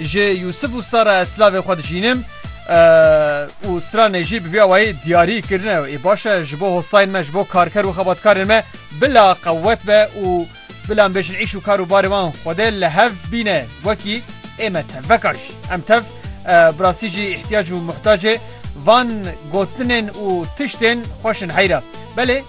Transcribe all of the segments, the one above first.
Ji Yûsif û Sara ez silavê xwe dijînim û stranê jî bi vî awayî diyarî kirine ê baş e ji bo hostayên me ji bo karker û xebatkarên me bila qewet be û bila em bêjin îş û kar û barê wan Xwedê li hev bîne wekî ê me tev veka jî em tev bi rastî jî îhtiyac û muhtacê van gotinên û tiştên xweş in heyra belê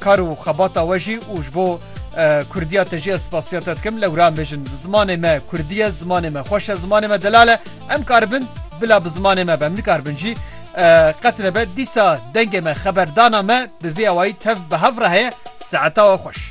Kar û xebata we jî û ji bo Kurdiya te jî ez spasiya te dikim. Lewra mijin zimanê me Kurdî ye, zimanê me xweş e, zimanê me delal e. Em karibin bila bi zimanê me be, em nikaribin jî qet nebe. Dîsa dengê me, xeberdana me bi vê awayî tev bi hev re heye. Saeta we xweş.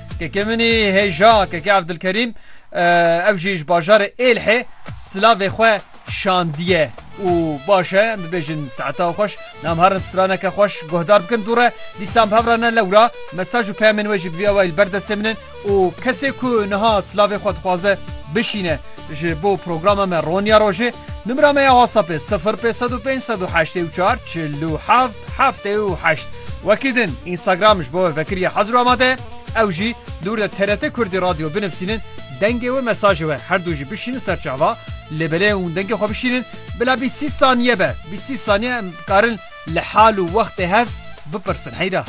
Kekê min î hêja Kekê Evdilkerîm ew jî ji bajarê Êlhê silavê xwe şandiye û baş e em bibêjin saeta xweş nam herin straneke xweş guhdar bikin dû re dîsan bi hev re ne lewra mesaj û peyamên wê jî bi vî awayî li ber destê min in û kesê ku niha silavê xwe dixwaze bişîne Ji bo programa me Ronya Rojê nimra me ya WhatsAppê sifir pê sed û pênc sed û heştê û çar çil û heft heftê û heşt. Wekî din Instagram ji bo we vekiriya hezir û amade ye. Ew jî dûr de TRT Kurdî Radio binivîsînin, dengê we mesajê we her du jî bişînin ser çava, lêbelê hûn dengê xwe bişînin bila bîstî saniye be. Bîstî saniye em dikarin li hal û wextê hev bipirsin heyra.